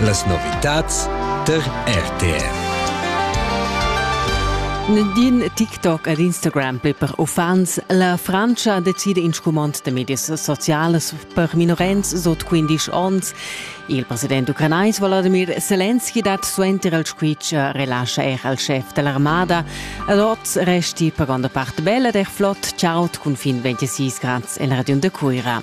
Las novitads tar RTR. Din TikTok ed Instagram per uffants. La Frantscha decida in scumond da medias socialas per minorens sot 15 onns. Il president ucranais Volodymyr Zelensky dat suenter il squitsch relascha er al chef dell'armada. Ad oz resti per granda part bella der Flot. Ciao, cun fin 26 grads en Radio de Cuira.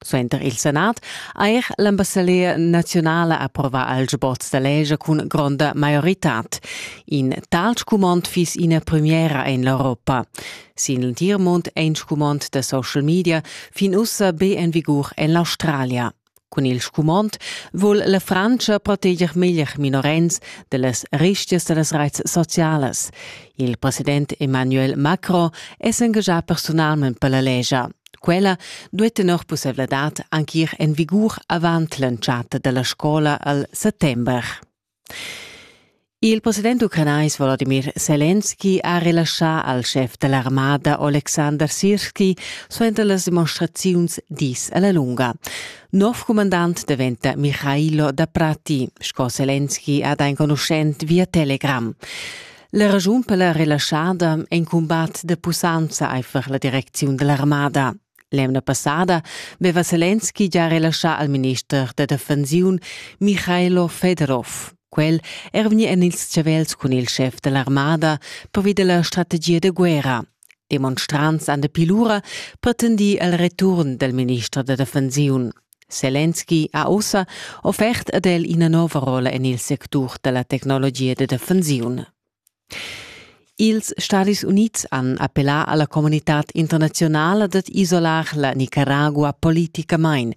Suenter il Senat ha er l'ambassadera naziunala approvà al sboz da leger cun gronda maioritad. In tal scumond fiss ina premiera en l'Europa. Sin l'entir mund è in scumond da social media fin ussa be en vigur en l'Australia. Cun il scumond vul la Frantscha proteger meglier minorenns dallas ristias da las reits socialas. Il president Emmanuel Macron è s'engaschà personalment per la legia. Quella duai tenor pussaivladad anc ir en vigur avant l'entschatta da la scola al settember. Il president ucranais Volodymyr Selenski ha relaschà al schef da l'armada Alexander Sirski suenter las demonstraziuns dis a la lunga. Nov comandant daventa Michailo da Prati, sco Selenski ha da enconuschent via Telegram. La raschun per la relaschada è in cumbat da pussanza aifer la direcziun dell'armada. L'emna passada veva Zelensky già relaschà al minister da defensiun Michailo Fedorov. Quel er vegni en ils chavels cun il chef dell'armada pervi della strategia de guerra. Demonstrants han dapi lura pretendì il return dal minister da defensiun. Selenski ha ussa offert ad el ina nova rolla en il sectur da la tecnologia da defensiun. Ils Stadis Unids han appellà alla comunitad internazionala dad isolar la Nicaragua politicamain.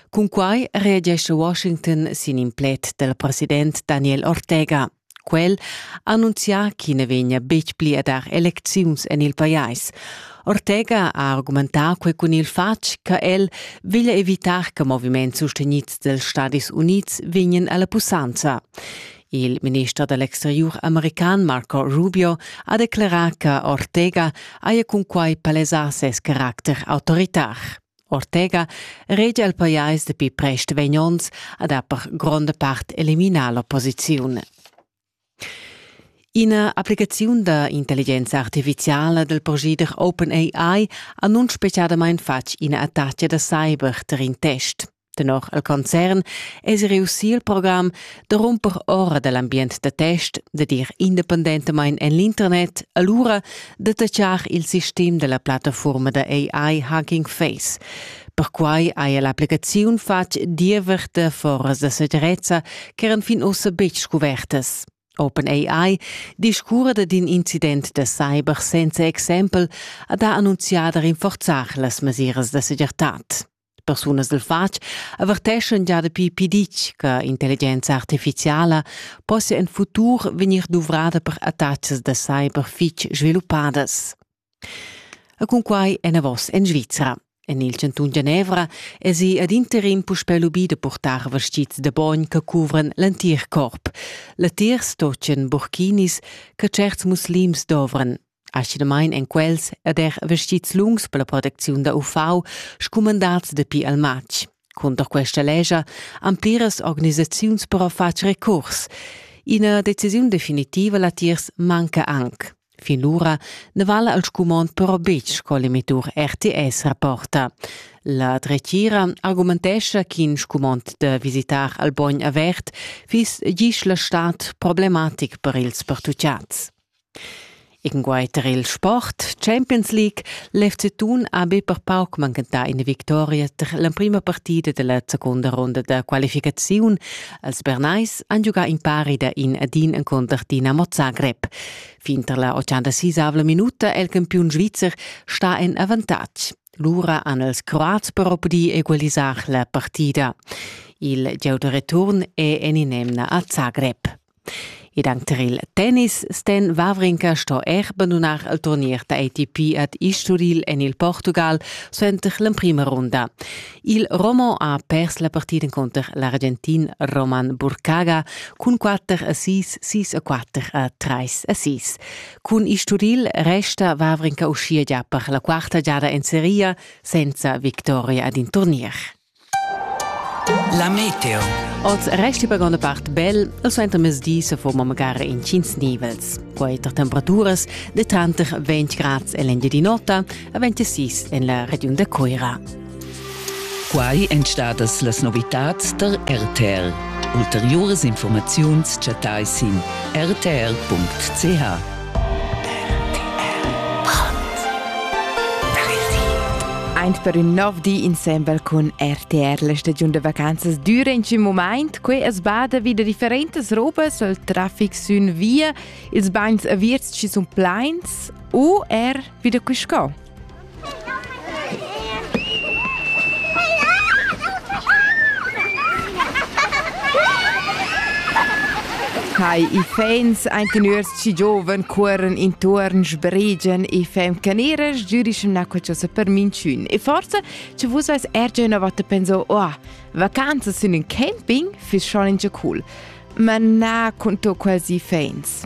Cun quai reagesce Washington sin in pled del president Daniel Ortega. Quel ha annunzià ch'i na vegnia betg pli a dar elecziuns en il pajais. Ortega ha argumentà quei cun il fatg che el veglia evitar che moviments sustenids dels Stadis Unids vegnan alla pussanza. Il minister dell'exterior american Marco Rubio ha declarà che Ortega haja cun quai palesà ses caracter autoritar. Ortega regia il pajais dapi prest vegn onns ad ha per gronda part eliminar l'opposiziun. Ina applicaziun da intelligenza artificiala del procedere OpenAI ha nun speciadamain fatg ina attacca da cyber ter in test. Tenor il concern es reussì il program da rumper ora dall'ambient da test da dir independentamain en l'internet, allura Detachar il sistem della plattaforma da AI Hacking Face. Perquai haja l'applicaziun fatg diever de foras da segirezza ch'eran fin ussa betg scuvertas. OpenAI discurra d'in incident da cyber senza exempel ha da annunziar da rinforzar las mesiras da segirtad. Persunas dal fatg averteschan gia dapi pitg che intelligenza artificiala possia en futur vegnir duvrada per attacks da cyber fitg sviluppadas. E cun quai enavos en Svizra. En il chantun Genevra esi ad interim puspè lubì da purtar vestgids da bogn che cuvran l'entir corp. Latiers tocen burkinis che certs muslims dovran. Aschinamein ein quels ed er vestits lungs per la protecziun da UV scumandats dapi al matg. Cunter questa lescha han pliras organisaziuns però fatg recurs. Ina decisiun definitiva latiers manca anc. Fin lura ne vala al scumond però betg co l'emittur RTS rapporta. La dretgira argumentescha ch'in scumond da visitar al bogn avert fiss gis la stat problematic per ils pertucciats. Incunquei tar il sport Champions League l'FC Thun ha be per pauc manchentà ina victoria tar l'emprima partida dalla secunda ronda da qualificaziun. Els Bernais han giugà in pari da in ad in encunter Dinamo Zagreb. Fin tar la 86 minuta è il campiun svizzer stà en avantatg. Lura han els Croats però pudì egualisar la partida. Il gieu da return è en in'emna a Zagreb. Ed anc tar il tennis Sten Wawrinka sto er bandunar il turnier da ATP ad Isturil en il Portugal suenter l'emprima runda. Il Romo ha pers la partida cunter l'Argentin Roman Burkaga cun 4 a 6, 6 a 4 a 3 a 6. Cun Isturil resta Wawrinka uschia gia per la quarta giada en seria senza victoria ad in turnier. La meteo. Oz resti per gronda part bel e suenter mezdi se forma magari in tschins nivels. Quei tar temperaturas de tranter 20 grads en l'Engiadina nota a 26 en la regiun de Coira. Quai èn stadas las novitads der RTL. Ulteriores Informaziuns chattai sin rtl.ch. Eint per ün nov di insembel cun RTR la stagiun da vacanzas düra in tschim mumaint. Que es bada vi da differentas robas al trafic sün via, ils bagns avierts chi sun plains u er vi da quiscò. Hai ifens ein teners ci gioven cuoren intuorn sbrigen e fem caneras giurischem na quel sa per minchun e forse ci vus als erge una volta penso oh vacanza sun in camping fiss schon in già cool Ma na cun to quasi feins.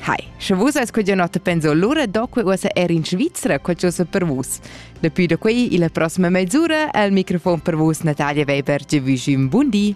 Hai, sche vus eis quella notte penso allora doque uossa er in Svizzera, quel giusa per vus. Depuis da qui, la prossima mezz'ora, al microfon per vus Natalia Weber, je vous un buon di.